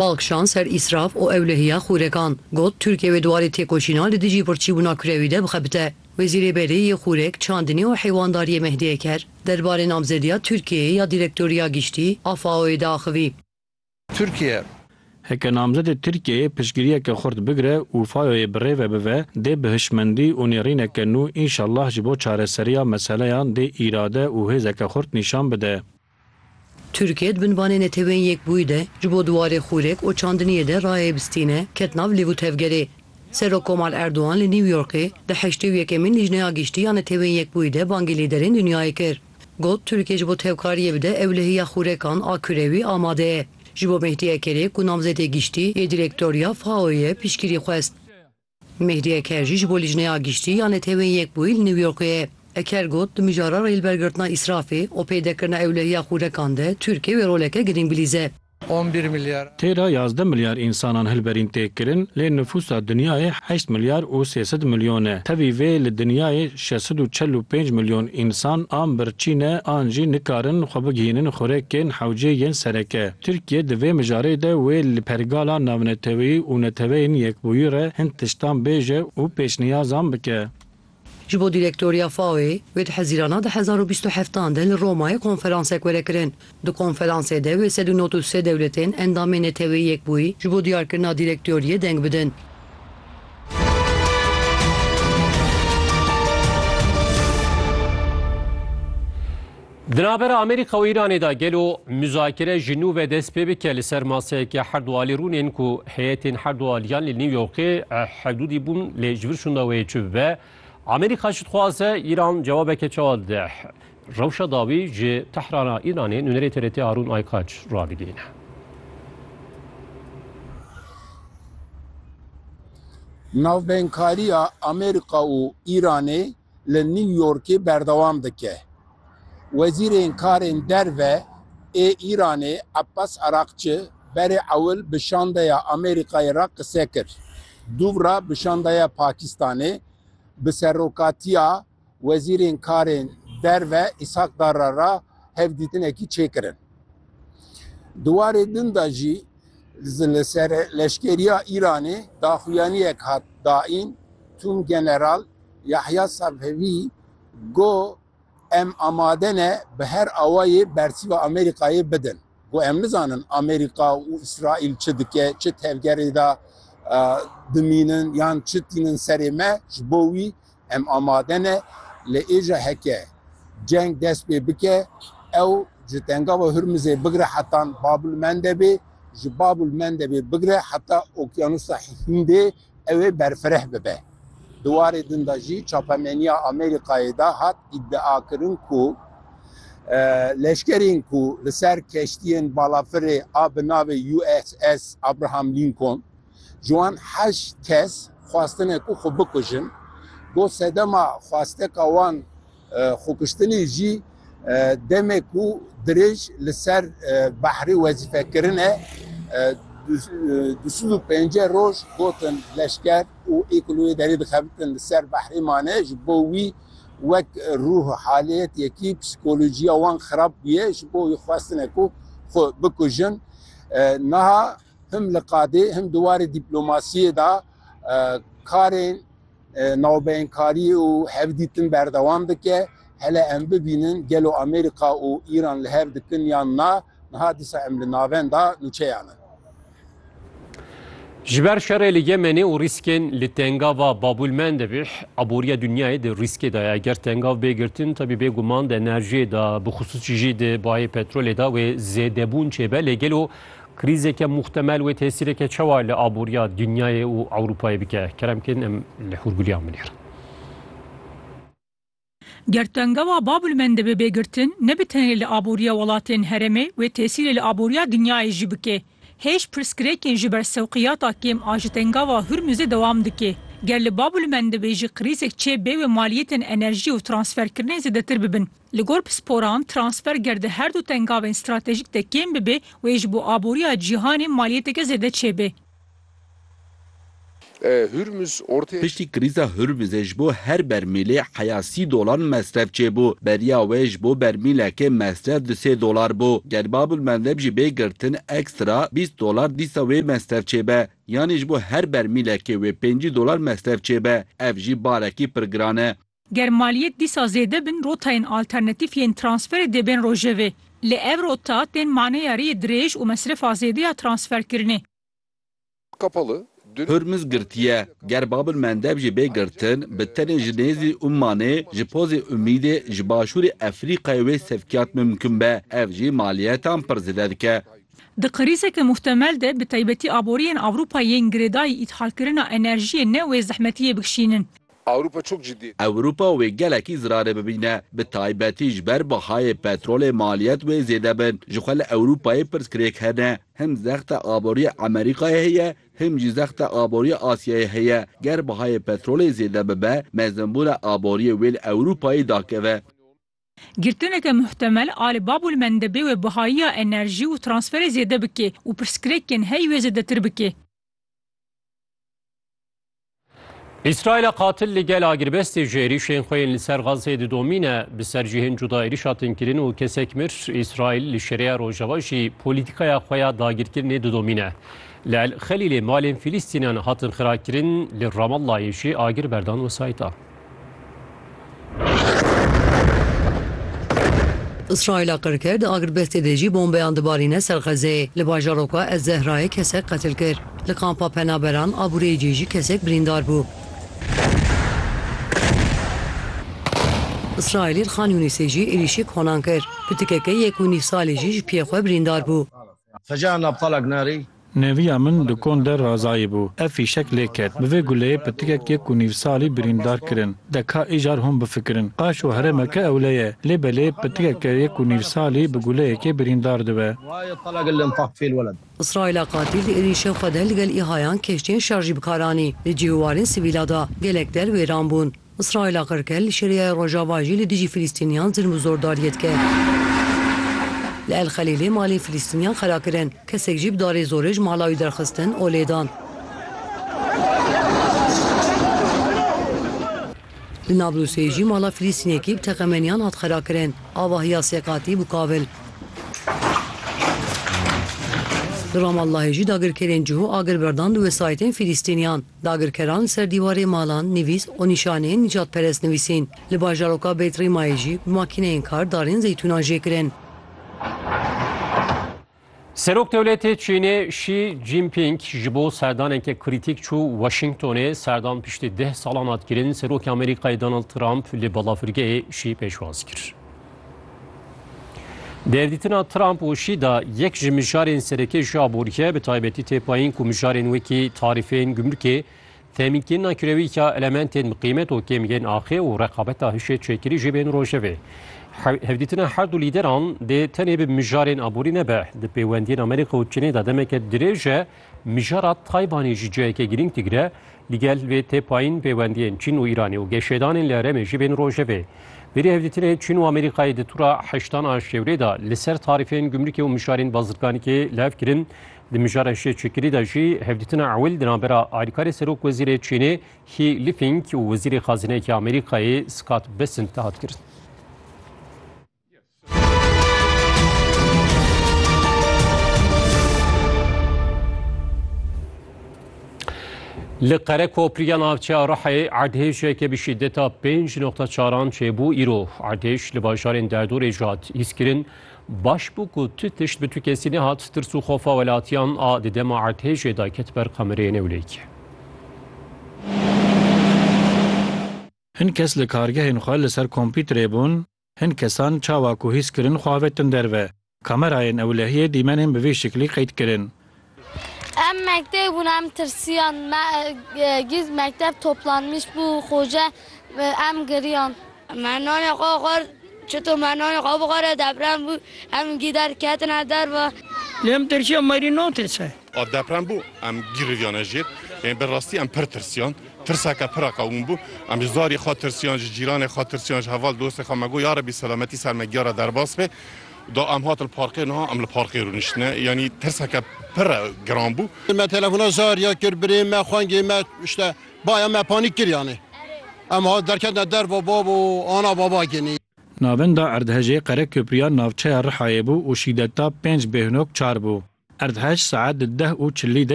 Bal kişand ser îsraf û ewlehiya xûrekan. Got, Tirkiye wê di warê têkoşîna li dijî birçîbûna kurewî de bixebite. Wezîrê Berê yê Xûrek, Çandinê û Heywandariyê Mehdi Eker derbarê namzediya Tirkiyeyê ya Direktoriya Giştî a FAO'yê diaxivî. Tirkiye. Heke namzedê Tirkiyeyê piştgiriyeke xurt bigire û FAO'yê bi rê ve bive, dê bi hişmendî û nêrîneke nû înşallah ji bo çareseriya meseleyan dê îrade û hêzeke xurt nîşan bide. Tirkiye di binvanê Netewên Yekbûyî de ji bo di warê xûrek û çandiniyê de rayê bistîne ket nav lêv û tevgerê. Serok Komal Erdogan li New Yorkê di heştê û yekemîn Lijneya Giştî ya Netewên Yekbûyî de bangê lîderên dinyayê kir. Got, Tirkiye ji bo tevkariyê bide ewlehiya xûrekan a kurewî amade ye. Ji bo Mehdi Ekerê ku namzedê giştî yê Direktoriya FAO'yê ye piştgirî xwest. Mehdiye Ker jî ji bo Lîjneya Giştî ya Neteweyên Yekbûyî li New Yorkê ye. Ker got, Di mijara rêlbergirtina îsrafê û pêdekirina ewlehiya xûrekan de Tirkiye wê roleke girîng bilîze. Tê de yazdeh milyar însanan hilberîn tê kirin, lê nifûsa dinyayê heşt milyar û sê sed milyon e. Tevî vê li dinyayê şeş sed û çel û pênc milyon însan an birçî ne an jî nikarin xwe bigihînin xurekên hewcê yên sereke. Tirkiye di vê mijarê de wê li pergala navneteweyî û neteweyên yekbûyî re hin tiştan bêje û pêşniyazan bike. Ji bo dîrektoriya FAO'ê, wê di Hezîrana di hezar û bîst û heftan de li Romayê konferansek were kirin. Di konferansê de wê sed û nod û sê dewletên endamê neteweyî yekbûyî ji bo diyarkirina dîrektoriyê deng bidin. Di navbera Amerîka û Îranê de gelo muzakere ji nû ve dest pê bike li ser maseyeke her du alî rûn ên ku heyetên her du aliyan li New Yorkê hevdûdî bûn lê ji vir şûnda wê yê çi bibe? Amerîka çi dixwaze? Îran cewabeke çawa dide? Rewşa dawî ji Tehrana Îranê nûnerê TRT Harûn Aykaç rabîdîne. Navbeynkariya Amerîka û Îranê li New Yorkê berdewam dike. Wezîrên Karên Derve ê Îranê Abbas Araqçi berê ewil bi şandeya Amerîkayê re qise kir. Dûvra bi şandeya Pakistanê bi serokatiya Wezîrên Karên Derve Îshak Darra re hevdîtinekî çêkirin. Di warê din de jî li ser leşkeriya Îranê daxuyaniyek hat daîn Tûmgeneral Yahya Safevi got, Em amade ne bi her awayê bersiva Amerîkayê bidin. Got, Em nizanin Amerîka û Îsraîl çi dike, çi tevgerê de dimînin yan çi tînin serê me. Ji bo wî em amade ne. Lê êja heke ceng dest pê bike, ew ji Tengava Hurmizê bigire heta Bab-ul-Mendebê, ji Bab-ul-Mendebê bigire heta Okyanusa Hîndê Ew ê berfireh bibe. Di warê din de jî çapemeniya Amerîkayê de hat îdiakirin ku leşkerên ku li ser keştiyên balafirê a bi navê USS Abraham Lincoln ji wan heşt kes xwestine ku xwe bikujin, got sedema xwesteka wan Xwekuştinê jî demê ku dirêj li ser behrê wezîfekirin e. Du sed û pênceh roj gotin leşker û êkû li wê derê dixebitin li ser behrê mane. Ji bo wî wek rûh haliyet yekî psîkolojiya wan xirab bûye. Ji bo wî xwestine ku xwe bikujin. Niha him li qadê him di warê dîplomasiyê de karên Navbeyinkarî û hevdîtin berdewam dike. Hele em bibînin gelo Amerîka û Îran li hev dikin yan na, niha dîsa em li navenda nûçeyan in. Ji ber şerê li Yemenê û rîskên li tengava Babûlmendebîh, aboriya dinyayê di rîskê de ye. Ger tengav bê girtin, tevî bê guman di enerjiyê de, bixusûs jî di bayê petrolê de wê zêdebûn çêbe. Lê gelo Krîzeke muhtemel wê tesîreke çawa li aboriya dinyayê û Ewropayê bike? Kerem kên em li hûrgiliyan binêrin. Ger tengewa Babulmende bibe girtin, ne bi tenê li aboriya welatên herêmê, wê tesîrê li aboriya dinyayê jî bike. Hêj pirsgirêkên ji ber sewqiyata kêm a ji tengewa Hurmuzê dewam dike. Ger li Babulmende bê jî krîzek çê bê wê maliyetên enerjiyê û transferkirinê zêdetir bibin. Li gor pisporan, transfer ger di her du tengavên stratejîk de kêm bibe, wê ji bo aboriya cîhanê maliyeteke zêde çêbe. Piştî krîza Hurmizê ji bo her bermîlê heya sî dolan mesref çêbû. Beriya wê ji bo bermîlekê mesref di sê dolar bû. Ger Babulmendeb jî bê girtin ekstra bîst dolar dîsa wê mesref çêbe. Yanî ji bo her bermîlekê wê pêncî dolar mesref çêbe. Ev jî barekî pir giran e. Ger maliyet dîsa zêde bin rotayên alternatîf yên transferê dê bên rojevê. Lê ev rota tên maneya rêyê dirêj û mesrefa zêde ya transferkirinê. Hurmuz girtiye. Ger Bab el Mendeb jî bê girtin, bi tenê ji nêzî Ummanê, ji pozê Umîdê, ji başûrê Efrîqayê wê sevkiyat mimkun be. Ev jî maliyetan pir zêde dike. Di krîzeke muhtemel de bi taybetî aboriyên Ewropayê yên girêdayî îthalkirina enerjiyê ne wê zehmetiyê bikişînin. Ewropa çok ciddi. Ewropa wê gelekî zirarê bibîne. Bi taybetî ji ber bahayê petrolê maliyet wê zêde bin. Ji xwe li Ewropayê pirsgirêk hene. Him zexta aboriyê Emerîkayê heye, him jî zexta aboriyê Asyayê heye. Ger bahayê petrolê zêde bibe, mezinbûna aboriyê wê li Ewropayê dakeve. Girtineke muhtemel a li Babûlmendebê wê bihayiya enerjî û transferê zêde bike û pirsgirêkên heyî wê zêdetir bike. Îsraîla qatil li gel agirbestê ji êrîşên xwe yên li ser Xazzê didomîne bi ser cihên cuda êrîş hatin kirin û kesek mir. Îsraîl li şereya Rojava jî polîtîkaya xwe ya dagirkirinê didomîne. Li El Xelîlê malên Fîlîstînan hatin xirakirin, li Ramallayê jî agir berdan wesayîta. Îsraîla qirker di agirbestê de jî bombeyan dibarîne ser Xezeyê. Li bajaroka Ez Zehrayê kesek qetil kir. Li kampa penaberan Abûreyê cê jî kesek birîndar bû. Îsraîlî li Xan Yûnîsê jî êrîşî konan kir. Pitikeke yek û nîv salî jî ji piyê xwe birîndar bû. Xeca nabtalak narî. Neviya min di kon de Razayî bû. Ev fîşek lê ket. Bi vê guleyê pitikek yek û nîv salî birîndar kirin. De ka îcar hûn bifikirin. Qaşo herêmeke ewle ye. Lê belê pitikeke yek û nîv salî bi guleyekê birîndar dibe. Îsraîla qatîl di êrîşên xwe de li gel îhayan kêştiyên şerjî bi kar anî. Li cih û warên sivîla da gelek der wêran bûn. Îsraîla qirkir li Şîriyeyê Rojava jî li dijî Filîstîniyan zilm û zordariyê dike. Li El Xelîlê malên Filîstîniyan xera kirin, kesek jî bi darê zorê ji mala wî derxistin û lêdan. Li Nablusê jî mala Filîstînekî bi teqemeniyan hat xera kirin, avahiya sê qatî bû kavil. Li Ramallahê jî dagirkerên cihû agir berdan di wesayîtên Filîstîniyan. Dagirkeran ser dîwarê malan nivîs û nîşaneyên nîcadperest nivîsîn. Li bajaroka Beit Rîmayê jî bi makîneyên kar darên zeytûnan jê kirin. Serokdewletê Çînê Şî Cînpîng ji bo serdaneke krîtîk çû Washingtonê. Serdan piştî deh salan hat kirin. Serokê Amerîkayê Donald Trump li balafirgehê Şî pêşwaz kir. Derdîtina Trump û Şî da yek ji mijarên sereke ji aborîye bi taybetî tê payîn ku mijarên wekî tarîfên gumrikê, temînkirina kirewîka elementên bi qîmet û kêm yên axê û reqabeta hişê çêkirî jê bên rojevê. Hevdîtina her du lîderan dê tenê bi mijarên aborî nebe. Di pêwendiyên Amerîka û Çînê de demeke dirêj e Mijara Taybanê jî ciheke girîng digire, li gel vê tê payîn pêwendiyên Çîn û Îranê û geşedanên li herêmê jî bên rojevê. Vêrî hevdîtinê Çîn û Amerîkayê di tura heştan a Şewrê de li ser tarîfên gumrikê û mijarên bazirganîkê lev kirin. Di mijara şê çekirî de jî hevdîtina ewil di navbera Alîkarê Serok Wezîrê Çînê He Lifing û Wezîrê Xazineyeke Amerîkayê Scott Bessent de hat kirin. Li Qerekopriya navçeya Rihê erdhêjeke bi şîdeta pênc noqta çaran çêbû îro erdhêj li bajarên derdorê jî hat hîskirin. Baş bû ku tu tişt bi tu kesî nehat tirs û xofa welatiyan a di dema erdhêjê de ket ber kamereyê newlêkê. Hin kes li kargehên xwe li ser kompîterê bûn Hin kesan çawa ku hîs kirin xwe avetin derve. Kamerayên ewlehiyê dîmenên bi vî şiklî qeyd kirin. Em mekteb bûn, em tirsiyan. Me girt mekteb toplanmış bû xoce, em giriyan. Me nanê xwe xwar, çito me nanê xwe bixware deprem bû, em gî derketine derve. Lê em tirsiyan merî natê ser. A deprem bû, em giriviyane jêr. Yên bi rastî em pir tirsiyan. Tirseke pir a qewim bû. Em ji zarê xwe tirsiyan, ji cîranê xwe tirsiyan, ji heval dostê xwe. Me got ya rebî selametî ser me giyara derbas be. Da em hatin parkê niha em li parkê rûniştine. Yanî tirseke pir e giran bû. Me telefona Zarya kir, birê me, xwengê me işte. Baya me panîk kiriyane. Em hat derketine derva babo, ana baba ginî. Navenda erdhejê Qereköprüya navçeya Rihayê bû û şîdeta pênc bêhnok çar bû. Erdhej saet di deh û çilî de